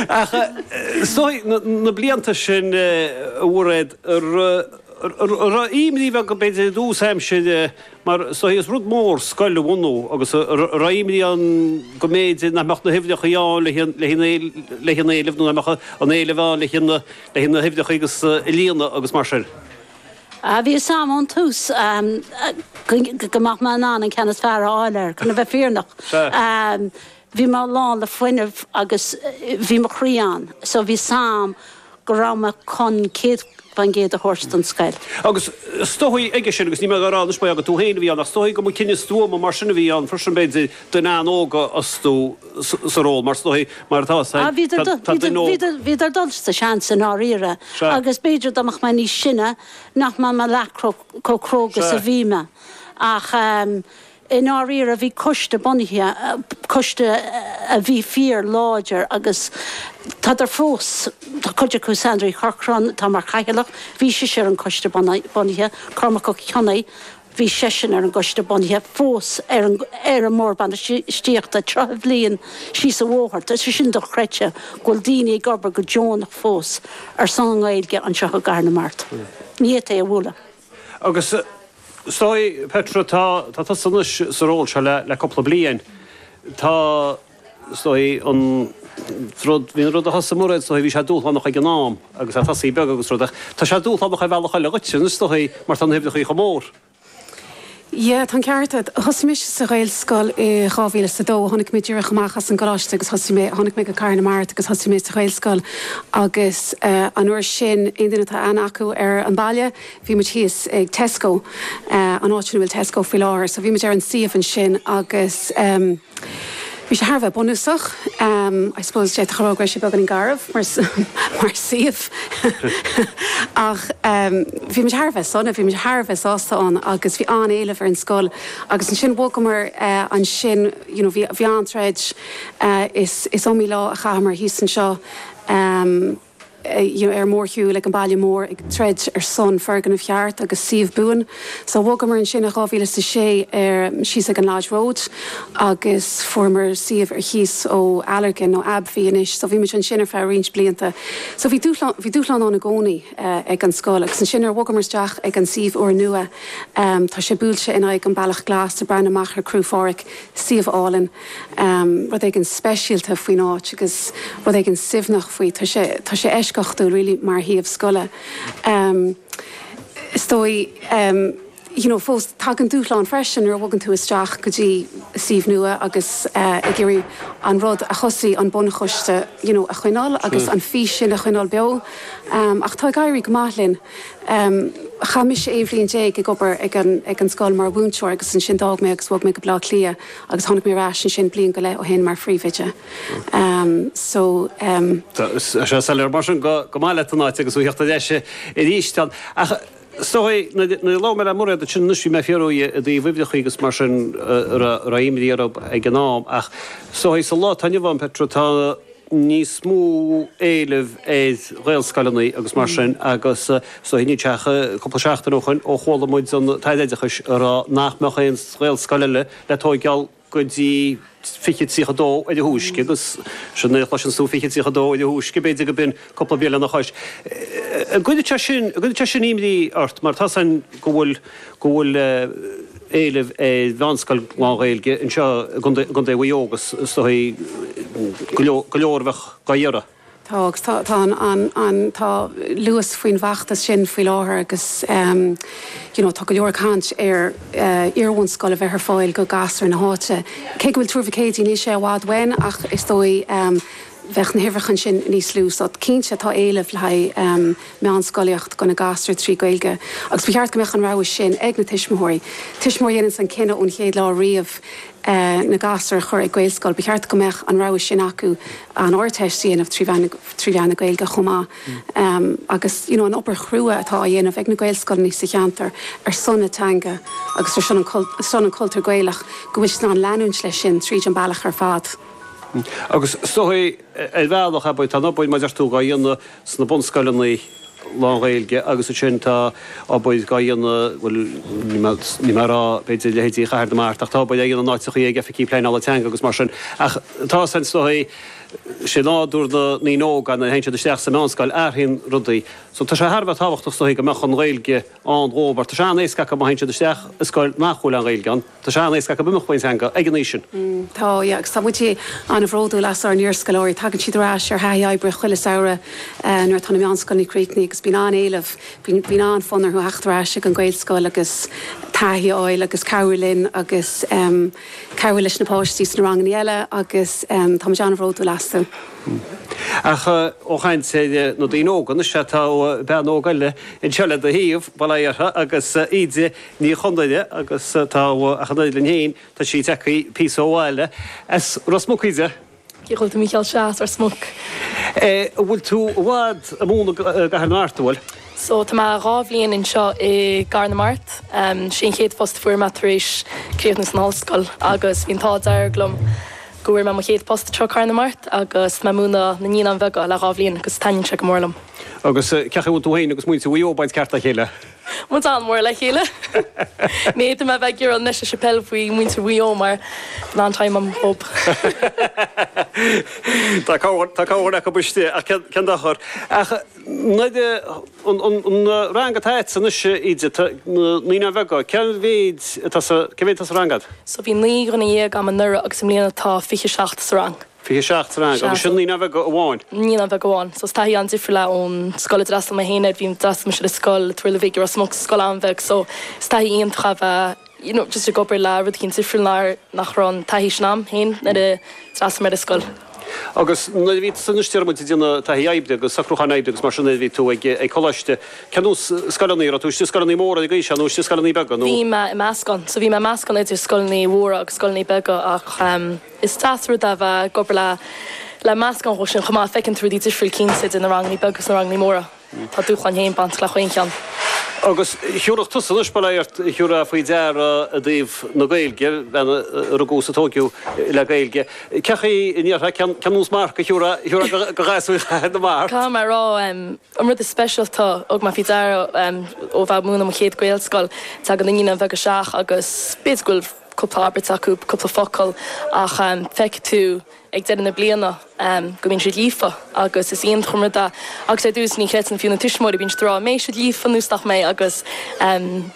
Ach sóidh, na blianta sin, a Mhairéad, raibh imní bheag, b'fhéidir, i dtús aimsire, mar sóidh, is rud mór scoil a bhunú agus raibh imní ann go mb'fhéidir nach mbeadh na huimhreachaí ann le haghaidh an éilimh nó nach mbeadh an t-éileamh ann le haghaidh na huimhreachaí a líonadh agus mar sin. Bhí a fhios agam ón tús go mbeadh mé in ann an ceann is fearr a fháil air, chun a bheith fírinneach. Bhí mé lán le fuinneamh agus bhí mo chroí ann, so bhí a fhios agam go raibh mé chun céad faoin gcéad a thabhairt don scoil. Agus is dóigh aige sin, agus níl mé ag rá, anois mar gheall gur mé féin a bhí ann, ach is dóigh go mba cinneadh stuama mar sin a bhí ann freisin b'fhéidir, duine óg a fhostú. sa ról, mar is dóigh, mar atá. Tá duine óg. Bhíodar ag dul sa seans, i ndáiríre, agus b'fhéidir dá mbeadh mé níos sine nach mbeadh mé leath chomh cróga is a bhí mé. Ach i ndáiríre, bhí coiste bunaithe, coiste a bhí fíor láidir agus tádar fós, tá cuid acu, Sandra Uí Chorcráin atá mar Chathaoirleach, bhí sise ar an choiste bunaithe, Cormac Ó Cionnaith, Bhí seisean ar an gcoiste bunaithe fós ar an mBord Bainistíochta tríocha bliain síos an bhóthar. Tá sé sin dochreidte, go bhfuil daoine ag obair go deonach fós ar son an Ghaeilge anseo i gCathair na Mart. Ní fhéadfá é a bhualadh. Agus is dóigh, Petra, tá tusa anois sa ról seo le cúpla bliain. Tá. Is dóigh an rud, bhí an rud a thosaigh Mairéad, is dóigh bhí sé dúshlánach ag an am agus ag tosaí beag agus rud ach tá sé dúshlánach ar bhealach eile dhuitse anois is dóigh mar tá na huimhreachaí chomh mór. Yeah, tá an ceart a'd. Thosaigh mise sa Ghaelscoil i dhá mhíle is a dó, tháinig mé díreach amach as an gcoláiste agus thosaigh mé, tháinig mé go Cathair na Mart agus thosaigh mé sa Ghaelscoil agus eh an uair sin, aon duine atá aithne acu ar an baile, bhí muid thíos ag Tesco, eh an áit sin a bhfuil Tesco faoi láthair, so bhí muid ar an suíomh ansin agus ehm. Bhí sé thar a bheith bunúsach. I suppose, d'fhéadfá a rá go raibh sé beagáinín garbh mar suíomh ach bhí muid thar a bheith sona, bhí muid thar a bheith sásta ann agus bhí an-éileamh ar an scoil agus ansin bhogamar ansin, you know, bhí an-troid. Is iomaí lá a chaitheamar thíos anseo. ar mhórshiúl ag an baile mór ag troid ar son foirgneamh cheart agus suíomh buan. So bhogamar ansin i dhá mhíle is a sé ar, síos ag an Lodge Road agus fuaireamar suíomh ar chíos ó Allergan, nó AbbVie anois. So bhí muid ansin ar feadh roinnt blianta. So bhí dúshlán, bhí dúshlán ann i gcónaí ag an scoil. Agus ansin nuair a bhogamar isteach ag an suíomh úr nua, tá sé buailte in aghaidh an Bealach Glas, ag breathnú amach ar Cruach Phádraig, suíomh álainn. rud éigin speisialta faoin áit agus rud éigin suaimhneach faoi. Tá sé, tá sé eisceachtúil really mar shuíomh scoile. Is dóigh you know fós tagann dúshlán freisin nuair a bhogann tú isteach go dtí suíomh nua agus ag iarraidh an rud a thosaigh an bunchoiste you know a choinneáil agus an fís sin a choinneáil beo. Ach tá ag éirí go maith linn. Chaith mise aon bhliain déag ag obair ag an, ag an scoil mar mhúinteoir agus ansin d'fhág mé agus bhog mé go Baile Átha Cliath. Agus tháinig mé ar ais ansin bliain go leith ó shin mar phríomhoide. So. Tá sé soiléir mar sin gur maith leat an áit agus ó thíocht ar ais arís ann. Ach 's dóigh, nuair a labhair mé le Mairéad ansin anois, bhí mé ag fiafraí dhi i dtaobh uimhreacha agus mar sin a raibh imní orab ag an am. Ach is dóigh sa lá atá inniu ann, Petra, tá, níos mó éilimh ar ghaelscoileanna agus mar sin agus so faoi láthair tá sé cúpla seachtain ó shoin ó chuala muid an tAire Oideachais a rá nach mbeadh aon ghaelscoil eile le tóigeáil go dtí 2032 ar a thúisce agus nuair a chloiseanns tú 2032 ar a thúisce b'fhéidir go b'in cúpla bliain lena chois. An gcuireann sé sin imní ort mar atá 's agam go bhfuil éileamh ar mheánscoil lán-Ghaeilge anseo i gContae Mhaigh Eo agus is dóigh go leor a bheadh dá iarraidh? Tá agus tá. Tá luas faoin bhfeachtas sin faoi láthair agus you know tá go leor ag caint ar iarbhunscoil a bheith ar fáil go gasúir na háite. Cé go bhfuil Tuar Mhic Éadaigh níl sé i bhfad uainn ach is dóigh bheadh na huimhreacha ansin níos lú. So cinnte tá éileamh le haghaidh meánscolaíocht go na gasúir trí Gaeilge agus ba cheart go mbeadh an rogha sin ag na tuismitheoirí. Tuismitheoir a dhéanann an cinneadh ón chéad lá riamh na gasúir a chur ag Gaelscoil, ba cheart go mbeadh an rogha sin acu an Ardteist a dhéanamh trí mheán trí mheán na Gaeilge chomh maith. Agus you know an obair chrua atá á dhéanamh ag na Gaelscoileanna sa cheantar ar son na teanga agus ar son an cultúr Gaelach go bhfuil siad in ann leanúint leis sin tríd an bealach ar fad. Agus is dóigh, ar bhealach, abair, tá an obair, mar a deir tú, á dhéanamh sna bunscoileanna lánGhaeilge agus ansin tá obair á dhéanamh, bhuel, níl mé ag rá, b'fhéidir, i leithéidí Chathair na Mart, ach tá obair á dhéanamh in áiteachaí ag Oifigí Pleanála Teanga agus mar sin. Ach tá 's againn is dóigh, sé nádúr na ndaoine óga nuair a théann siad isteach sa mheánscoil, athraíonn rudaí. So tá sé thar a bheith tábhachtach is dóigh go mbeadh an Ghaeilge ann dhóibh mar tá sé an-éasca acu má théann siad isteach i scoil nach bhfuil an Ghaeilge ann, Tá sé an-éasca acu imeacht ón teanga ag an aois sin. Tá, yeah, agus tá muid an-bhródúil as ár n-iarscoláirí. Tagann siad ar ais ar thaithí oibre chuile samhradh nuair atá na meánscoileanna críochnaithe agus bíonn an-éileamh, bíonn an-fhonn orthu a theacht ar ais chuig an Ghaelscoil agus taithí a fháil agus cabhrú linn agus cabhrú leis na páistí sna ranganna eile agus tá muid an-bhródúil astu. Ach ó chaint ar na daoine óga, anois tá bean óg eile anseo le do thaobh, bail ó Dhia uirthi, agus í ag. Ní Chonaire agus tá ach an oiread linn féin, tá sí ag teacht píosa ó bhaile, as Ros Muc í de. Cé a dhúirt do Mhícheál sea as Ros Muc? An bhfuil tú i bhfad i mbun i gCathair na Mart, an bhfuil? So, tá mé dhá bhliain anseo i gCathair na Mart. Sé an chéad phost a fuair mé tar éis críochnú san ollscoil agus bhí an t-ádh dearg liom go bhfuair mé mo chéad phost anseo i Cathair na Mart agus mé ag múineadh na Naíonáin Bheaga le dhá bhliain agus taitníonn sé go mór liom. Agus cé a bhfuil tú féin agus muintir Mhaigh Eo ag baint ceart le chéile? Muid an-mhór le chéile. Níl mé le bheith ag iarraidh anois aon scéal faoi mhuintir Mhaigh Eo mar an am I hope. Tá cabhair, tá cabhair acu istigh ach cén, cén dochar. Ach nuair a, an, an, an rang atá agatsa anois, Íde, tá na naíonáin bheaga, cén mhéid atá sa, cén mhéid atá sa rang a'd? So bhí naoi nduine dhéag a'm anuraidh agus i mbliana tá fiche seacht sa rang. 27 rang, agus sin naíonáin bheaga amháin. Naíonáin bheaga amháin, so is taithí an-difriúil é ón scoil a d'fhreastail mé féin air. Bhí, d'fhreastail mise ar scoil i dTuar Bhig i Ros Muc, scoil an-bheag, so is taithí iontach ab ea you know just ag obair le rud éigin difriúil nár, nach raibh an taithí sin a'm féin nuair a d'fhreastail mé ar an scoil. Agus nuair a bhí tusa anois, déarfainn, ag déanamh taithí oibre agus socrúcháin oibre agus mar sin de, bhí tú ag an gcoláiste, cén nós scoileanna a raibh tú, istigh i scoileanna móra ag aois seo nó istigh i scoileanna beaga nó? Bhí mé i meascán, so bhí mé i meascán idir scoileanna mhóra agus scoileanna beaga ach. Is deas rud é bheith ag obair le le meascán dhe sin chomh maith. Feiceann tú rudaí difriúil cinnte, idir na rangannaí beaga agus na rangannaí móra. Tá dúshláin féin bainteach le chaon cheann. Agus thiúrfadh tusa anois, b'fhéidir, thiúrfá faoi deara i dtaobh na Gaeilge, bhean a rugadh is a tóigeadh le Gaeilge. Cé chaoi a ndéarfá, cén nós marc a thiúrfá do ghasúir Chathair na Mart? Caithfidh mé a rá, an rud is speisialta a thug mé faoi deara ó bheith ag múineadh i mo chéad Ghaelscoil, tagann na naíonáin bheaga isteach agus b'fhéidir go bhfuil, cúpla abairt acu, cúpla focal, ach feicfidh tú ag deireadh na bliana go mbíonn siad líofa agus is iontach an rud é agus ar dtús ní chreideann fiú na tuismitheoirí, bíonn siad ag rá 'an mbeidh siad líofa nó nach mbeidh' agus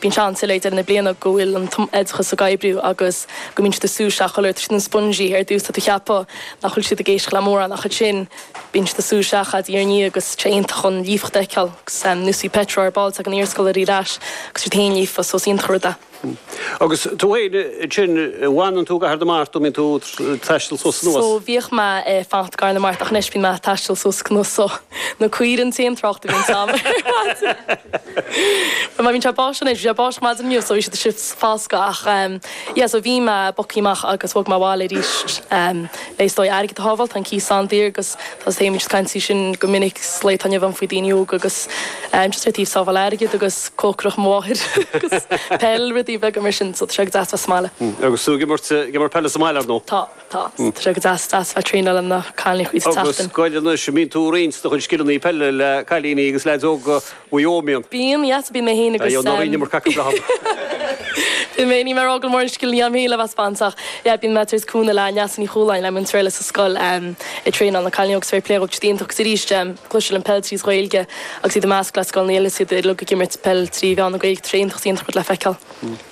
bíonn siad uilig ag deireadh na bliana go bhfuil an t-oideachas ag oibriú agus go mbíonn siad ag sú isteach oiread, tá siad ina sponges, ar dtús tá tú ag ceapadh nach bhfuil siad ag éisteacht le mórán ach ansin bíonn siad ag sú isteach de dhiaidh ar ndiaidh agus sé iontach an líofacht a fheiceáil agus nuair a bhí pictiúr ar ball ag an iarscoil ar ais agus siad féin líofa so is iontach an rud é. Agus tú fhéin ansin, bhfanann tú i gCathair na Mart nó bíonn tú ag taisteal suas anuas? So, bhíodh mé ag fanacht i gCathair na Mart ach anois bíonn mé ag taisteal suas anuas so, na caoire an t-aon trácht a bhíonns a'm ar maidin. But má bhíonn sé báistí anois, bhí sé báistí maidin inniu so bhí siad ag déanamh foscadh ach ehm, yeah so bhí mé, book-áil amach agus bhog mé abhaile arís ehm, le is dóigh airgead a shábháil, tá an cíos an-daor agus, Tá mé ag cloisteáil caint sin go minic sa lae atá inniu ann faoi dhaoine óga agus just ar taobh sábháil airgid agus cócaireacht mo mháthair agus peil, rudaí beaga mar sin, so tá sé go deas bheith sa mbaile. Agus tú ag imirt, ag imirt peile sa mbaile, ar ndóigh? Tá, tá. So tá sé go deas, deas bheith ag traenáil le na cailiní chuile sheachtain. Agus ar scoil anois, an mbíonn tú ag roinnt do chuid scileanna peile le cailíní agus leaids óga? Ó, bíonn. Bíonn, yes, bíonn mé féin agus. Aye, náirín mar cac an bhrathar. Bíonn mé, ní mé rá go mór an scil anois a'm féin le bheith ag spáint ach yeah bíonn mé ag tabhairt cúnamh le Neasa Ní Chualáin, le Múinteoir Shéamais sa scoil em ag traenáil na cailíní agus tar éis plé rud iontach agus arís is cosúil le peil tríd Ghaeilge agus iad i measc le scoileanna eile is iad uilig ag imirt peil trí mheán na Gaeilge tar éis an t-eacht iontach le feiceáil.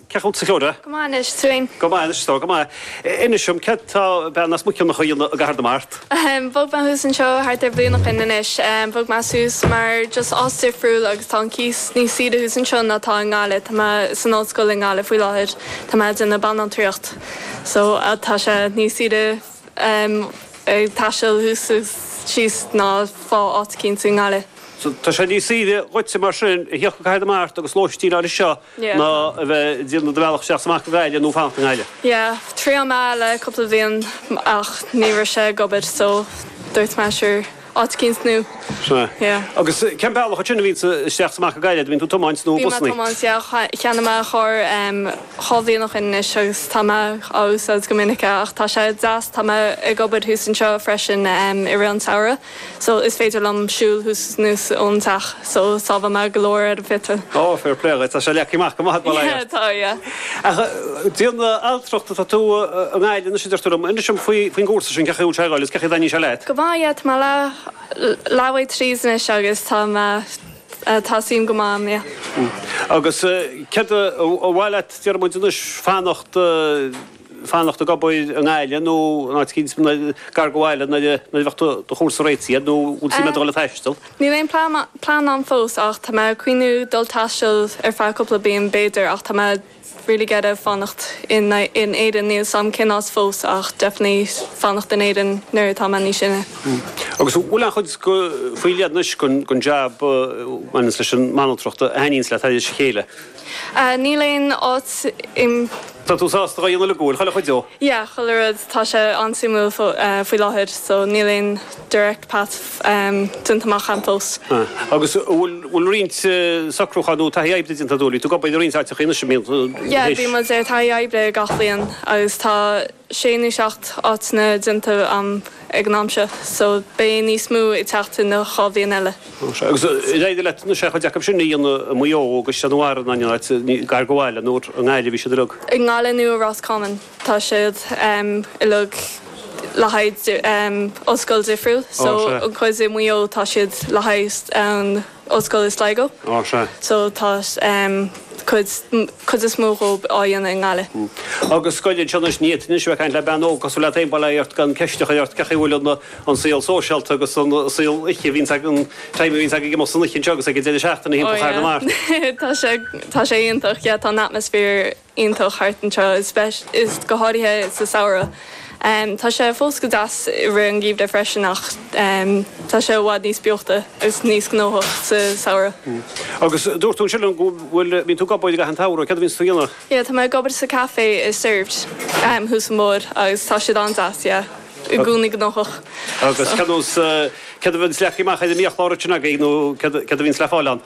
Cén chaoi a bhfuil tú? Go maith anois, tú fhéin? Go maith anois, go maith. Inis dom, céard tá bean as Muiceanach a dhéanamh i gCathair na Mart? Ahem, bhog mé suas anseo thart ar bhliain ó shin anois. Bhog mé suas mar just áit difriúil agus tá an cíos níos saoire thuas anseo ná atá i nGaillimh. Tá mé san ollscoil i nGaillimh faoi láthair, tá mé ag déanamh banaltraíocht, so tá sé níos saoire ag taisteal suas agus síos ná fá áit eicínt i nGaillimh. Tá sé níos saoire dhuitse mar sin, a thíocht go Cathair na Mart agus lóistín a fháil anseo ná a bheith ag déanamh do bhealach isteach 's amach go Gaillimh nó fanacht i nGaillimh. Yeah, thriail mé le cúpla bhliain ach ní raibh sé ag obair so dúirt mé sure, áit eicínt nua. Sin é. Yeah. Agus cén bealach ansin a bhíonns a'd isteach 's amach go Gaillimh, an mbíonn tú ag tiomáint nó busannaí? Bíonn mé ag tiomáint, yeah. Cheannaigh mé carr dhá bhliain ó shin anois agus tá mé á úsáid go minic ach tá sé deas, tá mé ag obair thuas anseo freisin i rith an tsamhraidh. so is féidir liom siúl thuas is anuas ón teach so sábhálann mé go leor ar an bpeitreal. Ó, fair play dhuit, tá sé leagtha amach go maith, bail ó Dhia ort. Tá, yeah. Ach banaltracht atá tú i nGaillimh anois a deir tú liom, inis dom faoin gcúrsa sin, cén chaoi a bhfuil sé ag goil is cén chaoi a dtaitníonn sé leat? Go maith, yeah, tá mé leath bealaigh tríd anois agus tá mé, tá suim go maith ann, yeah. Agus céard ba mhaith leat, déarfaidh muid anois, fanacht, fanacht ag obair i nGaillimh nó in áit éicint gar do bhaile nuair a bheas do chúrsa réitithe nó an bhfuil suim a'd a dhul ag taisteal? Níl aon plean a'm fós ach tá mé ag cuimhneamh dul taisteal ar feadh cúpla bliain b'fhéidir ach tá mé really ag iarraidh fanacht in Éirinn, níl a fhios a'm cén áit fós ach definitely fanacht in Éirinn nuair atá mé níos sine. Agus an bhfuil aon chuid faoi leith anois den jab a bhaineanns leis an mbanaltracht a thaitníonns leat thairis a chéile? Níl aon áit im. Tá tú sásta a dhéanamh de chuile? Chuile chuid de? Yeah, chuile rud. Tá sé an-suimiúil faoi láthair so níl aon direct path déanta amach a'm fós. Ah. Agus an bhfuil roinnt socrúcháin nó taithí oibre déanta a'd? An bhfuil tú ag obair i roinnt áiteacha anois, an mbíonn, tar éis? Yeah, bíonn muid ar taithí oibre gach bliain agus tá. sé nó seacht áiteanna déanta a'm ag an am seo so beidh níos mó ag teacht sa dá bhliain eile. Agus ar éirigh leat aon chuid acu sin a dhéanamh i Maigh Eo agus Caisleán an Bharraigh nó aon áit gar do bhaile nó i nGaillimh a bhí siad uilig? I nGaillimh nó i Ros Comáin tá siad uilig le haghaidh ollscoil difriúil so an chuid i Maigh Eo tá siad le haghaidh an, ollscoil i Sligo. Á, sea. So tá chuid is mó dhóibh á dhéanamh i nGaillimh. Agus scoil anseo anois, ní thiteann. Anois bheith ag caint le bean óg cosúil leat féin, bail ort, gan ceist a chur ort, cén chaoi a bhfuil an an saol sóisialta agus an saol oíche a bhíonns ag an time, an saghas a bhíonns ag ag imeacht san oíche anseo agus ag an deireadh seachtaine thimpeall Chathair na Mart? Tá sé, tá sé iontach, yeah, tá an atmosphere. iontach thart anseo, go háirithe sa samhradh. Tá sé fós go deas i rith an gheimhridh freisin ach tá sé i bhfad níos beochta agus níos gnóthach sa samhradh. Agus dúirt tú ansin liom go bhfuil, bíonn tú ag obair i gcaitheamh an tsamhraidh, céard a bhíonns tú a dhéanamh? Yeah, tá mé ag obair sa café i Served thuas an bóthar agus tá siad an-deas, yeah, i gcónaí gnóthach. Agus céard a bhíonns leagtha amach ar an mbiachlár ansin agaibh nó céard a bhíonns le fáil ann?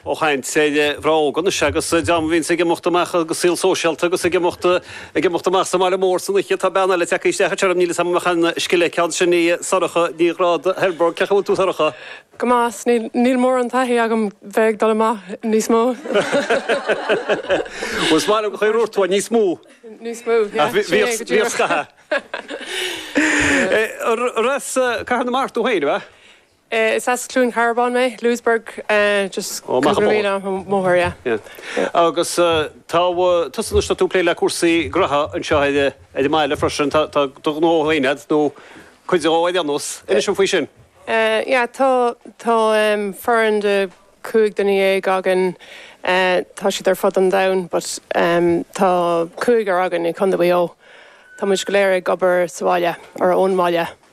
ag caint ar dhream óg anois agus dream a bhíonns ag imeacht amach, go saol sóisialta agus ag imeacht ag imeacht amach sa mbaile mór san oíche. Tá bean eile tagtha isteach chugainn freisin, níl 'fhios a'm an mbeadh aon scil aici ann, sin í Sorcha Ní Ghráda, Kilbourg. Cén chaoi a bhfuil tú a Shorcha? Go maith, ach níl mórán taithí agam bheith ag dul amach níos mó. Bhuel is maith liom an chaoi a dúirt tú é, níos mó. Níos mó, yeah, sin é go díreach. Ach bhíodh scaitheamh. Arb as Cathair na Mart tú féin, a bheith? Is as Cluain Cearbán mé, Louisburgh, just cúpla míle siar an bóthar, yeah. Agus tá tusa anois, tá tú ag plé le cúrsaí graithe anseo ar an mbaile freisin, tá do ghnó féin agat, nó cuid dhe ar aon nós. Inis dom faoi sin. Yeah, tá foireann de chúig dhuine déag againn, tá siad ar fud an domhain but tá cúigear againn i Contae Mhaigh Eo. Tá muid go léir ag obair sa bhaile, or ón mbaile.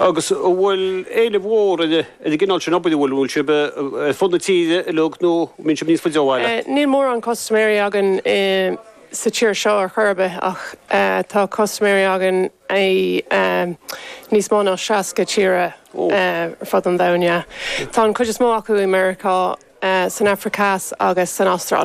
Agus an bhfuil éileamh mór ar an gcineál sin obair, an bhfuil? An bhfuil sibh ar fud na tíre uilig nó an mbíonn sibh níos faide ó bhaile? Níl mórán custaiméirí againn sa tír seo ar chor ar bith ach tá custaiméirí againn i níos mó ná 60 tíre ar fud an domhain. Tá an chuid is mó acu i Meiriceá, san Afraic Theas agus san Astráil.